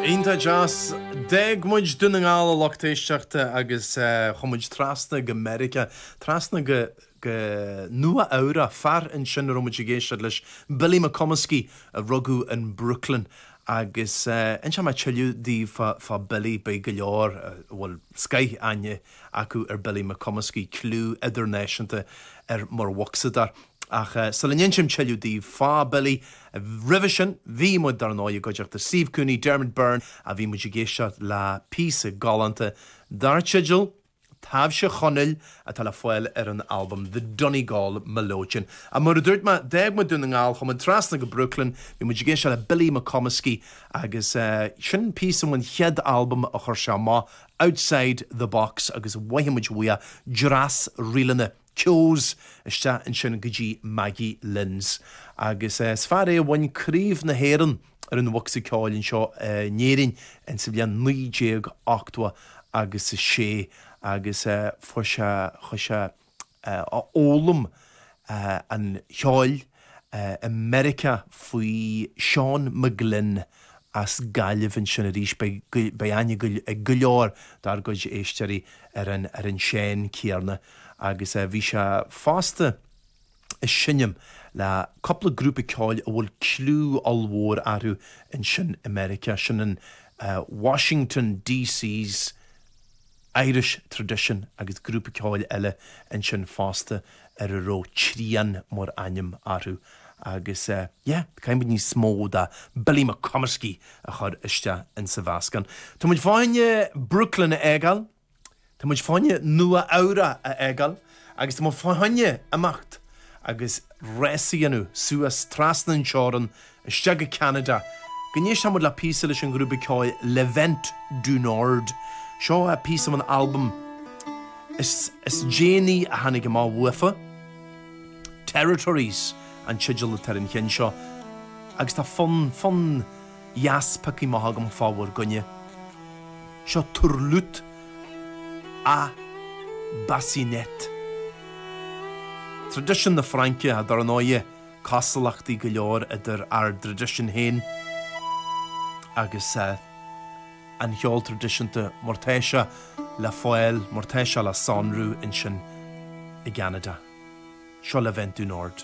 Iontach deas. D'fhág muid Dún na nGall a lucht éisteachta agus chuaigh muid trasna go Meiriceá, trasna go go Nua Eabhrach, fear ansin a raibh muid ag éisteacht leis, Billy McComiskey, a rugadh in Brooklyn agus inseoidh mé tuilleadh daoibh fá fá Billy, beidh go leor, a bhfuil scoith aithne acu ar Billy McComiskey, cliú idirnáisiúnta air mar bhocsadóir. Ach sula n-insím tuilleadh daoibh fá Billy, Roimhe sin bhí muid, dar ndóigh, i gcuideachta Steve Cooney, Dermot Byrne, a bhí muid ag éisteacht le píosa galánta dar teideal 'Taibhse Chonaill' atá le fáil ar an albam The Donegal Melodeon. Ah, mar a dúirt mé, d'fhág muid Dún na nGall, chuaigh muid trasna go Brooklyn, bhí muid ag éisteacht le Billy McComiskey agus sin píosa ón chéad albam a chuir sé amach, Outside the Box agus mhothaigh muid uaidh dreas ríleanna. Keogh's isteach ansin go dtí Maggie Lynn's agus is fear é a bhain Craobh na hÉireann ar an bhocsa ceoil anseo in Éirinn in sa bhliain 1986 agus fuair sé chuaigh sé a fhoghlaim an cheoil i Meiriceá faoi Seán McGlynn as Gaillimh ansin arís. Beidh aithne ag go leor dár gcuid éisteoirí ar an Seán céarna agus bhí sé fosta ag seinm le cúpla grúpa ceoil a bhfuil cliú ollmhór orthu ansin i Meiriceá, sin an Washington DC's. Irish Tradition agus grúpa ceoil eile ansin fosta ar a raibh Trian mar ainm orthu agus yeah, caithfidh muid níos mó de Billy McComiskey a chur isteach insa mheascán. Tá muid fá choinne Brooklyn a fhágáil, tá muid fá choinne Nua Eabhrach a fhágáil agus tá muid fá choinne imeacht agus rása a dhéanamh suas trasna an teorainn Isteach go Ceanada go n-éistfidh muid le píosa leis an ghrúpa ceoil Le Vent du Nord. Seo píosa ón albam is is déanaí a tháinig amach uafa. Territories an teideal atá ar an cheann seo agus tá fonn fonn dheas pioctha amach agam fá bhur gcoinne. Seo Turlutte à Bassinette. Traidisiún na Fraince, dar ndóighe. cosúlachtaí go leor idir ár dtraidisiún féin agus an cheol traidisiúnta mar tá sé le fáil, mar tá sé le sonrú ansin i gCeanada. Seo Le Vent du Nord.